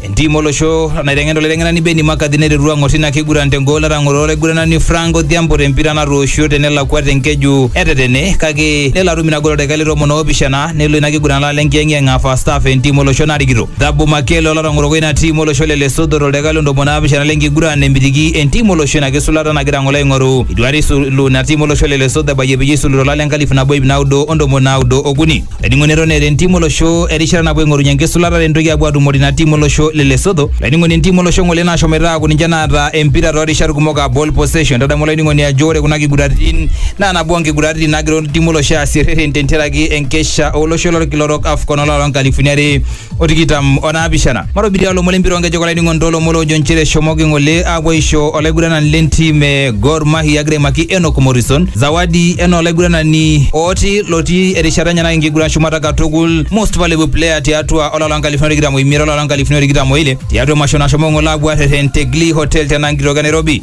Entim olosho naiteng'en olaiteng'enani Benni Makadhi neteru ang'or tina kiguran tengol etang'oro olaiguranani Frank Odhiambo tempira natooshio tenelakua tenkeju etetene kake nelo atum ina gol toldakai le tomon oopishana nelo ina kiguran laala enkiyeng'iyeng aa first half entim olosho narikito. Thabo Makele olatang'oroko ina tim olosho le Lesotho toldakai le ntomoni naapishana lenkiguran nemitiki entim olosho ina kisulata nagira ng'ole aing'oru. Eitu aikata eisulu ina tim olosho le Lesotho ebayie peyie eisulu tolari le nkalifu nabo iip naudo o ntomoni naudo okuni. Laining'oni eton eeta entim olosho erishata napuo aing'orunye enkisulata tentoki apuo atumore ina tim olosho le Lesotho. Laining'oni entim olosho ng'ole nashomoita aaku ninche naata empira too rishat kumok aa ball possession. Tadamu olaining'oni ajo ore kuna kiguraritin naa nabo oo nkiguraritin naagira entiim olosho aasie rrerren tentiaraki enkesha olosho lolkila orok AFCON olari loo nkalifuni are o tikitam o naapishana matobitia olomon lempira onkejek olainining'oni toolomon loojo nchere eshomoki ng'ole aapuo aisho olaiguranani lentim e Gor Mahia egira aimaki Enock Morrison zawadi enaa olaiguranani ooti lotii erishata enye nake enkiguran shumata katukul most valuable player tiatua olapa loo nkalifuni tikitam oimiet olapa loo nkalifuni tikitam oile tiatua emasho nashomo ng'ole aapuo arrerren te Glee Hotel tena nkitoki e Nairobi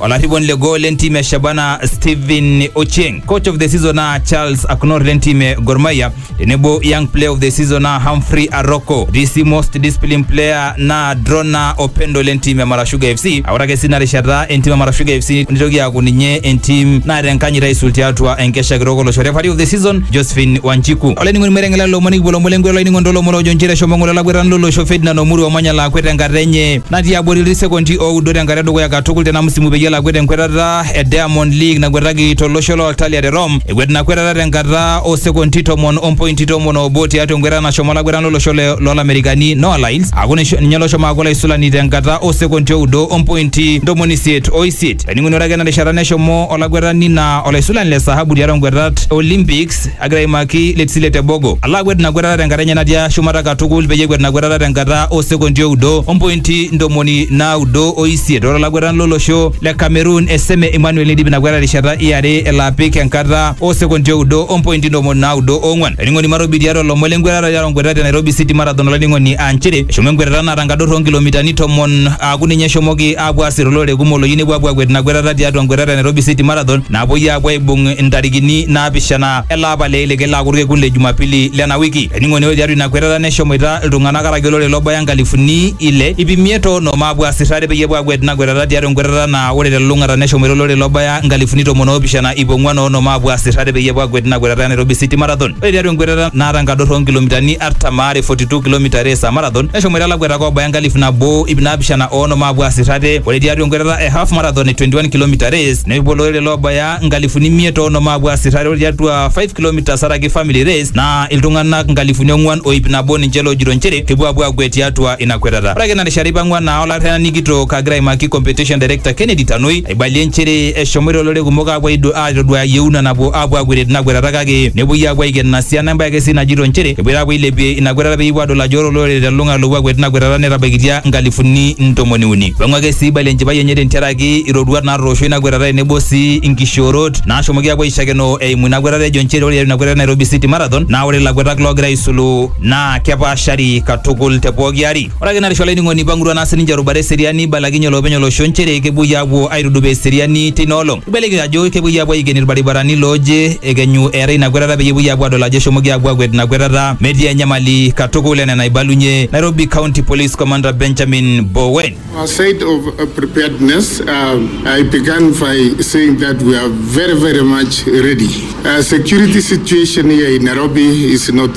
Olarriponi le gol le ntim e Shabana Stephen Ochieng, coach of the season naa Charles Aknor le ntim e Gor Mahia tenebo young player of the season naa Humphrey Aroko. DC most disciplined player naa Drona Opendo le ntim e Mara Sugar FC. Ore ake sii ina rishata entim e Mara Sugar FC nitoki aaku ninye entim naata enkanyit aisul tiatua enkesha kitok olosho. Referee of the season Josephine Wanjiku. Olainining'oni mereng'ela lomoni kipuo lomon lenkwela olainining'oni tolomon ojo nchere eshomo ng'ole olakwetani lolosho Ferdinand Omuru omanya laakwet tenkata enye. natii abori ilsekondi oudo tenkata edukuya katukul tena msimu peyie elo akwet enkwetata e Diamond League nakwetaki tolosho loo Italia te Rome. Ekwet ina kwetata tenkata oo sekondi tomon o mpointi tomon oobo tiatua enkwetata nashomo olakwetani lolosho le- loolamerikani Noah Lyles aaku nisho- ninye loshomo aaku olaisulani tenkata oo sekondi oudo o mpointi ntomoni isiet o isiet. Etoning'uno ore ake ena rishata neshomo olakwetani naa olaisulani le sahabu tiatua nkwetat e Olympics Alex agira aimaki Letsile Tebogo. Ala akwet ina kwetata tenkata enye natii shumata katukul peyie ekwet ina kwetata tenkata oo sekondi oudo ompointi ntomoni naudo o isiet ore olakwetani lolosho le Cameroon Eseme Emmanuel neidip ina kwetata terishata e are elo apik enkata oo sekondi oudo ompointi ntomoni naudo oong'wan. Olainining'oni Marobi tiatua ilomon le nkwetata tiatua nkwetata e Nairobi City Marathon olainining'oni aa nchere eshomo enkwetata naata nkador oo nkilomitani tomon aaku ninye eshomoki apuo aasir olorere kumok loyieu nepuo apuo akwet ina kwetata tiatua nkwetata e Nairobi City Marathon naapuoi apuo aibung intarikini naapishana ele apa le ile kelo aaku orkekun le Jumapili lena wiki. Ening'o nejo tiatua ina kwetata neshomoita iltung'anak araki olorere lobaya nkalifuni ile ip imiet o onom aapuo aasir ate peyie epuo akwet ina kwetata tiatua enkwetata naa ore telulung'ata neshomoita olorere lobaya nkalifuni tomon oopishana ip ong'wan o onom aapuo aasir ate peyie epuo akwet ina kwetata e Nairobi City Marathon. Ore tiatua enkwetata naata enkadorro oo nkilomitani artam aare, 42 kilometre race aa marathon, neshomoita lakwetak oobaya enkalifu nabo ip naapishana oonom aapuo aas irrate ore tiatua enkwetata e half marathon e 21 kilometer race nepuo olorere loobaya nkalifuni imiet oonom aapuo aas irrate ore tiatua 5 kilometres araki family race naa iltung'anak nkalifuni ong'uan o ip nabo ninche loojito nchere kepuo aapuo aakwet tiatua ina kwetata ore ake ina rishata eipang'ua naa olarrerani kitok agira aimaki competition director Kennedy Tanui Eibalie nchere eshomoita olorere kumok aapuo aitoduaya yieuna napuo aapuo akuetie tina kuetata kake nepuoi aapuo aiken ina siana embae ake sii najito nchere epoito aapuo ailepie ina kuetata peyie epuo aadol ajo ore olorere telulungata loopuo akuet tina kuetata netabaikitia nkalifuni ntomoni uni. Eipangu ake sii eibalie enchipai enye tentiaraki iroruat naatoosho ina kuetata tenebo sii inkishoorot naashomoki aapuo aishakenoo eimu ina kuetata ejo nchere ore tiatua ina kuetata e Nairobi City Marathon naa ore ilakuetak loogira aisulu naa kepaashari katukul te pooki ari. Ore ake narisho olainining'oni eipang'utua naa sininche erubata eseriani eibalakinye olopeny olosho nchere kepuoi aapuo aitudupaa eseriani teina olong. Eibalieki ajo kepuoi aapuo aiken ilbaribarani looje ekenyu eetae ina kwetata peyie epuoi aapuo aadol ajo eshomoki aapuo aakwet ina kwetata metii enyamali katukul enaa enaibalunye Nairobi County Police Commander Benjamin Bowen. Our side of preparedness, uh, I began by saying that we are very, very much ready. Uh, security situation here in Nairobi is not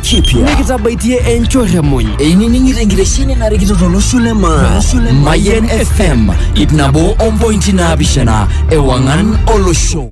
kipya nikitabaitie enchorremuny einining'ito enkitesheni narikito tolosho le maa mayen fm ip nabo ompointi naapishana ewang'an olosho